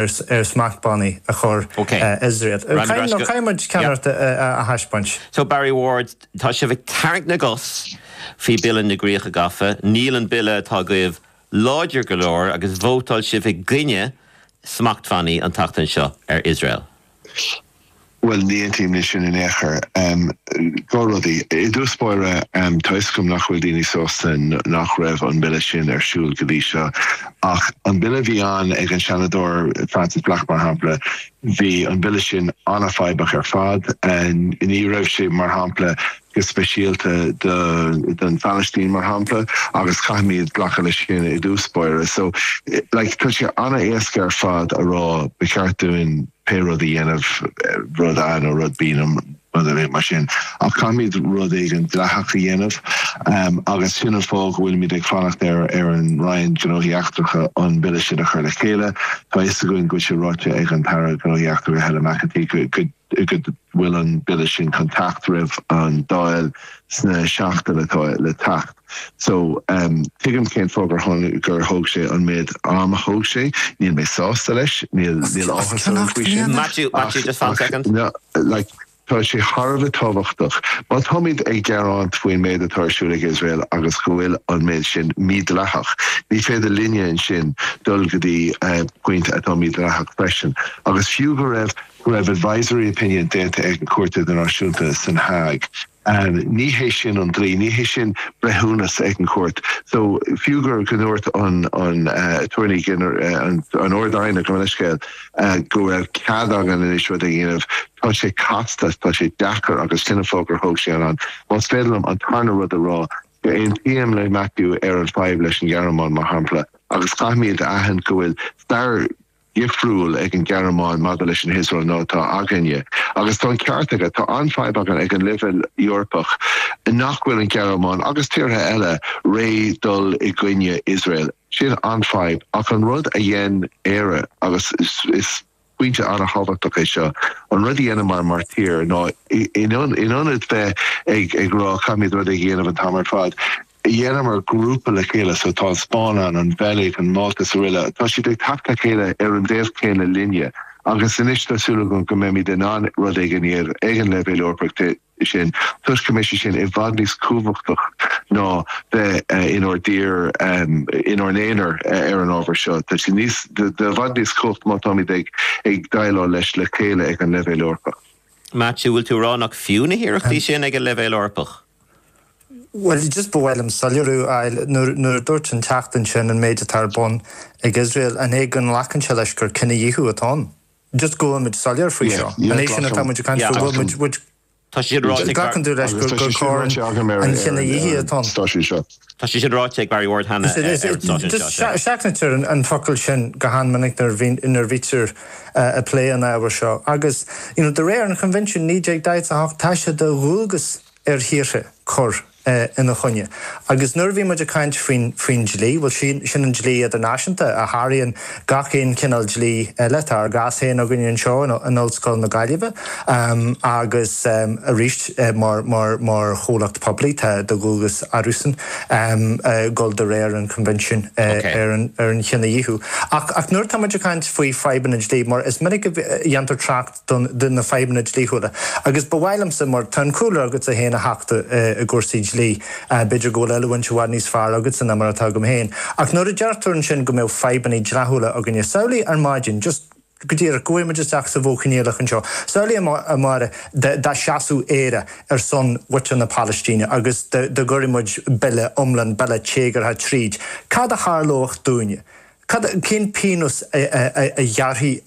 ar smachtbhannaí a chur ar Iosrael. Nó caithfidh muid ceannaireacht a thaispeáint. So Barry Ward, tá sibh ag tarraingt na gcos faoi Bille na gCríocha Gafa. Níl an Bille atá agaibh láidir go leor agus vótáil sibh i gcoinne smachtbhannaí an tseachtain seo ar Iosrael. Bhuel, ní aontaím le sin in aon chor. Dhá rudaí. I dtús báire, tá a fhios agam nach bhfuil daoine sásta nach raibh an Bille sin ar siúl go dtí seo. Ach an Bille a bhí ann ag an Seanadóir Frances Black, mar shampla, bhí an Bille sin an-fhadhbach ar fad. Ní raibh sé, mar shampla, go speisialta don Phalaistín, mar shampla, agus caithfimid glacadh leis sin i dtús báire. So, like, tá sé an-éasca ar fad a rá, ba cheart dúinn pé rud a dhéanamh, rud A nó rud B nó rud ar bith mar sin, ach caithfimid rud éigin dleathach a dhéanamh, em, agus sin an fáth go bhfuilimid ag fanacht ar, ar an Roinn Gnóthaí Eachtracha an Bille sin a chur le chéile. Tá a fhios againn go bhfuil sé ráite ag an tAire Gnóthaí Eachtracha, Helen McEntee, go, go, go bhfuil an Bille sin chun teacht roimh an Dáil sna seachtain atá le teacht. So tuigim cén fáth gur tháinig, gur thóg sé an méid am a thóg sé. Níl mé sásta leis, níl, níl áthas orm faoi sin. Maitiú, Maitiú, just fan second. No, like, tá sé thar a bheith tábhachtach. Má táimid ag gearáint faoin méid atá ar siúl ag Iosrael agus go bhfuil an méid sin mídleathach, ní féidir linne ansin dul go dtí pointe atá mídleathach freisin. Agus fiú go raibh go raibh advisory opinion déanta ag an Chúirt Idirnáisiúnta san Hague. Ní hé sin an dlí, ní hé sin breithiúnas ag an chúirt. So, fiú gur go ndúirt an an Attorney Gener, an an Ard-Aighne, gabh mo leithscéal, go raibh cead againn anois rud a dhéanamh, tá sé casta, tá sé deacair agus sin an fáth gur thóg sé an am. Más féidir liom an tarna rud a rá, aontaím le Maitiú ar an fadhb leis an Ghearmáin mar shampla agus caithfimid a aithint go bhfuil stair, dhifriúil ag an Ghearmáin maidir leis an hIosrael ná atá againne. Agus tá an ceart aige. Tá an-fhadhb againn ag an leibhéal Eorpach nach bhfuil an Ghearmáin, agus tíortha eile, réidh dul i gcoinne Iosrael. Sin an fhadhb. Ach an rud a dhein Éire, agus is pointe an-thábhachtach é seo, an rud a dheineamar mar thír ná in ionad bheith ag rá caithfimid rud éigin a dhéanamh an t-am ar fad, Dheineamar grúpa le chéile, so tá an Spáinn ann, an Bheilg, an Mhálta is araile. Tá siad ag teacht le chéile ar an dul chéanna linne agus anois tá súil agam go mbeimid in ann rud éigin a dhéanamh ag an leibhéal Eorpach de sin toisc go mbeidh sé sin i bhfad níos cumhachtach ná bheith inár dtír, inár n-aonar ar an ábhar seo. Tá sé níos, i bhfad níos cumhachtach má táimid ag déileáil leis le chéile ag an leibhéal Eorpach. Maitiú, bhfuil tú a rá nach fiú na hiarrachtaí sin ag an leibhéal Eorpach? Bhuel, just ba mhaith liom soiléiriú a fháil. Nuair a dúirt an Teachta ansin an méid atá ar bun ag Iosrael, an é go nglacann sé leis gur cinedhíothú atá ann? Just go bhfuil muid soiléir faoi seo. An é sin atá muid ag caint faoi? Bhfuil muid, glacann tú leis gur coir an chinedhíothaithe atá ann? Tá sé sin ráite ag Barry Ward cheana ar an stáisiún seo, sea. Seachnaítear an focal sin go han-mhinic nuair a bhítear ag plé an ábhair seo agus de réir an Choinbhinsiúin 1948 tá sé de dhualgas ar thíortha cur ina choinne agus nuair a bhíonn muid ag caint faoin dlí, bhuel sin an dlí idirnáisiúnta a sháraíonn gach aon chineál dlí eile. Tá ár gcás féin againn anseo in Ollscoil na Gaillimhe agus arís mar mar mar chomhlacht poiblí tá de dhualgas orthusan dul de réir an Choinbhinsiúin ar an Chinedhíothú. Ach nuair atáimid ag caint faoi fadhbanna dlí, mar is minic a dhéantar trácht, de na fadhbanna dlíthiúla agus ba mhaith liomsa, mar tá an cúlra agatsa féin a Theachta i gcúrsaí dlí, b'fhéidir go bhfuil oiliúint i bhfad níos fearr agatsa ná mar atá agam féin, ach nuair a deir tú ansin go mbeadh fadhbanna dleathúla againne, samhlaigh ar maidin, just go díreach, go bhfuair muid isteach sa Mhodh Coinníollach anseo, samhlaigh amárach dá seasfadh Éire ar son mhuintir na Palaistíne agus dá gcuirfeadh muid bille iomlán, bille téagartha tríd, cad a tharlódh dúinne? Cén pionós a ghearrfaí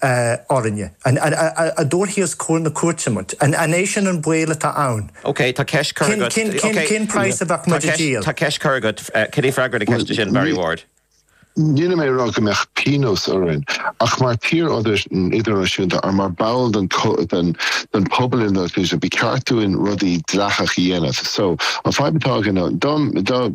orainne? An dtabharfaí os comhair na cúirte muid? An é sin an baol atá ann? OK, tá ceist curtha agat. Cén praghas a bheadh muid a díol? Tá ceist curtha agat. Cad é freagra na ceiste sin, Barry Ward? Níl mé ag rá go mbeadh pionós orainn, ach mar thír idirnáisiúnta agus mar bhall den pobal idirnáisiúnta ba cheart dúinn rudaí dleathacha a dhéanamh. So an fadhb atá againn ná, dá mbeadh